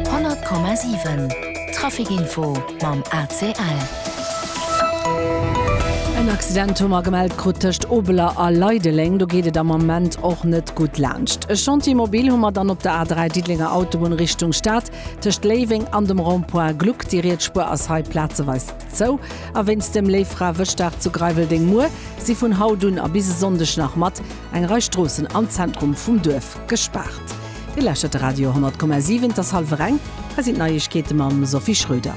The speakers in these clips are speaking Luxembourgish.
100,7 Trafic Info mam ACL. En Accident hu mer gemellt krut tëscht Obeler a Leideleng. Do geet et am Ament och net gutt laanscht. E Chantier mobil hu mer dann op der A3, Diddelenger Autobunn Richtung Stad, tëscht Léiweng an dem Rond-point Gluck. Déi riets Spuer ass hei plazeweis zou. A wéinst dem Léiffrawëschdag zu Greiweldeng muer si vun haut un a bis e Sonndeg nach mat. Eng Rei Stroossen am Zentrum vum Duerf gespaart. Dir lauschtert de Radio 10,7, et ass hallwer eng. Hei sinn d'Neiegkeete mam Sophie Schröder.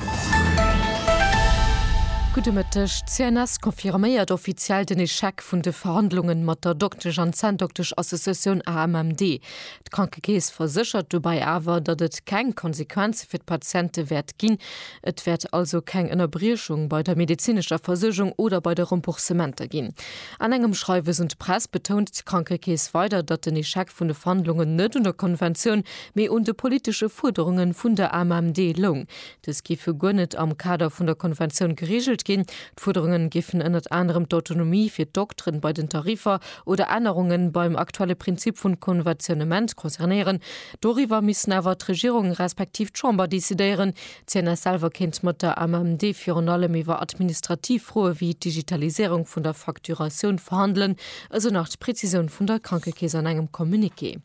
Gudde Mëtteg. D'CNS confirméiert offiziell den Echec vun de Verhandlunge mat der Doktesch an Zänndoktesch-Associatioun AMMD. D'Krankekeess verséchert dobäi awer, datt et keng Konsequenze fir d'Patiente wäert ginn, Et wäert also keng Ënnerbriechung bei der medezinescher Versuergung oder bei de Remboursementer ginn. An engem Schreiwes un d'Press betount d'Krankekeess weider, datt den Echec vun de Verhandlungen net un der Konventioun, mee un de politesche Fuerderunge vun der AMMD loung. Dës géife guer net am Kader vun der Konventioun gereegelt ginn. D'Fuerderunge géifen ënnert anerem d'Autonomie fir d'Dokteren bei den Tariffer oder Ännerunge beim aktuelle Prinzip vun Konventionnement concernéieren. Doriwwer missten awer d'Regierung respektiv d'Chamber decidéieren. D'CNS selwer kéint mat der AMMD virun allem iwwer administrativ Froe wéi d'Digitaliséierung vun der Facturatioun verhandelen, esou nach d'Prezisioun vun der Krankekeess an engem Communiqué.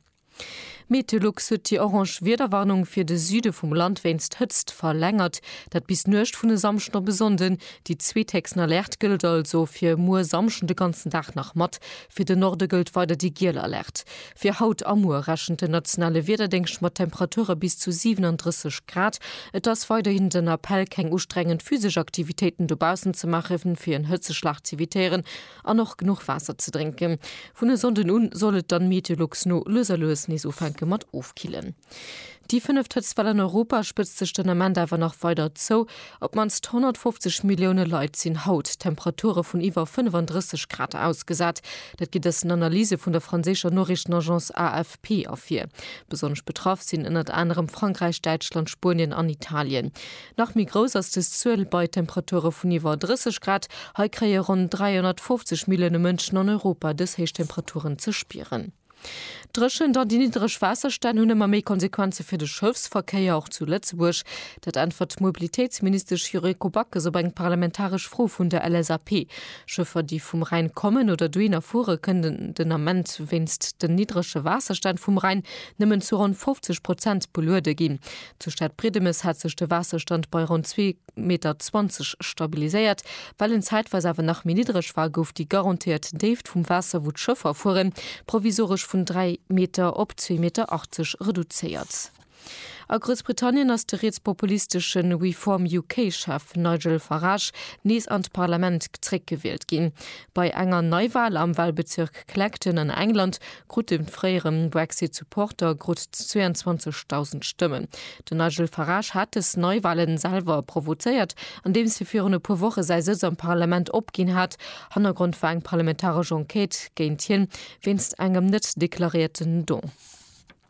Meteolux huet déi orange Wiederwarnung fir de Süde vum Land wéinst Hëtzt verlängert. Dat bis d'Nuecht vun e Samschden op e Sonnden. Déi zweethéchsten Alerte gëllt also fir muer Samschden de ganzen Dag nach mat. Fir de Norde gëllt weider déi giel Alerte. Fir haut a muer rechent den nationale Wiederdéngscht mat Temperature bis zu 37 Grad. Et ass weiderhin den Appell, keng ustrengend physesch Aktivitéiten dobaussen ze maachen, fir en Hëtzeschlag z'evitéieren an och genuch Waasser ze drénken. Vun e Sonnden u soll et dann Meteolux no lues a lues nees ufänke mat ofkillen. Déi fënneft hëtzt Well an Europa spëtzt sech den Ament awer nach weider zou. Op d'mannst 150 Millioune Leit sinn haut Temperature vun iwwer 35 Grad ausgesat. Dat geet aus den Analyse vun der franséischer Noriichtenagence AFP ervir. Besonnesch betraff sinn ënnert anerem Frankräich, Däitschland, Spuenien an Italien. Nach méi grouss ass des Zuel bei Temperature vun iwwer 30 Grad. Hei kréie ronn 350 Millioune Mënschen an Europa des héich Temperaturen ze spieren. D'Dréchent an déi niddreg Waasserstänn hunn ëmmer méi Konsequenze fir de Schëffsverkéier, och zu Lëtzebuerg. Dat äntwert d'Mobilitéitsministesch Yuriko Backes op eng parlamentaresch Fro vun der LSAP. Schëffer, déi vum Rhäin kommen oder dohinner fuere kënnen den Ament wéinst den niddrege Waasserstänn vum Rhäin nëmmen zu ronn 50 Prozent beluede ginn. Zur Stad Briedemes hat sech de Waasserstand bei ronn zwee. 1,20 Meter stabiliséiert. Well en zäitweis awer nach méi niddreg war, gouf déi garantéiert Déift vum Waasser, wou d'Schëffer fueren, provisoresch vun 3 Meter op 2,80 Meter reduzéiert. A Groussbritannien ass de rietspopulisteschen Reform UK-Chef Nigel Farage nees an d'Parlament zréckgewielt ginn. Bei enger Neiwal am Walbezirk Clacton an England krut de fréiere Brexit-Supporter grutt 22.000 Stëmmen. Den Nigel Farage hat dës Neiwalen selwer provozéiert, andeems hie virun e puer Woche säi Sëtz am Parlament opginn hat. Hannergrond war eng parlamentaresch Enquête géint hien, wéinst engem net deklarierten Don.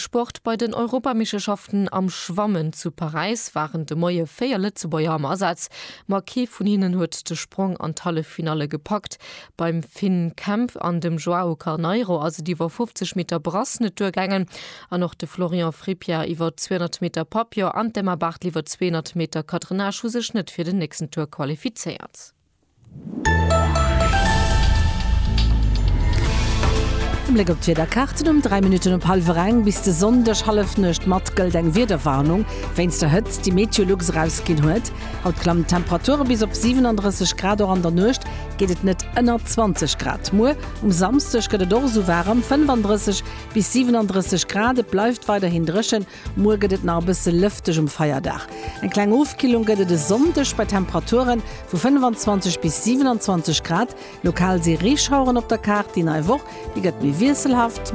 Sport, Bei den Europameeschterschaften am Schwammen zu Paräis waren de Moie 4 Lëtzebuerger am Asaz, ma kee vun hinnen huet de Sprong an d'Halleffinalle gepackt. Beim Finn Kemp an dem Joao Carneiro ass et iwwer 50 Meter Brasse net duergaangen an och de Florian Frippier iwwer 200 Meter Papillon an d'Emma Barthel iwwer 200 Meter Cadrannage hu sech net fir den nächsten Tour qualifizéiert. E Bléck op d'Wiederkaarten um 3 Minutten op hallwer eng. Bis de Sonndeg Hallefnuecht mat gëllt eng Wiederwarnung wéinst der Hëtzt, déi MeteoLux erausginn huet. Haut klammen d'Temperature bis op 37 Grad, och an der Nuecht geet et net ënner 20 Grad. Muer um Samsdeg gëtt et och esou waarem, 35 bis 37 Grad. Et bleift weiderhin dréchen, Muer gëtt et nach e bësse lëfteg um Feierdag. Eng kleng Ofkillung gëtt et e Sonndeg bei Temperature vu 25 bis 27 Grad. Lokal si Reeschaueren op der Kaart. Déi nei Woch, déi gëtt méi wiesselhaft.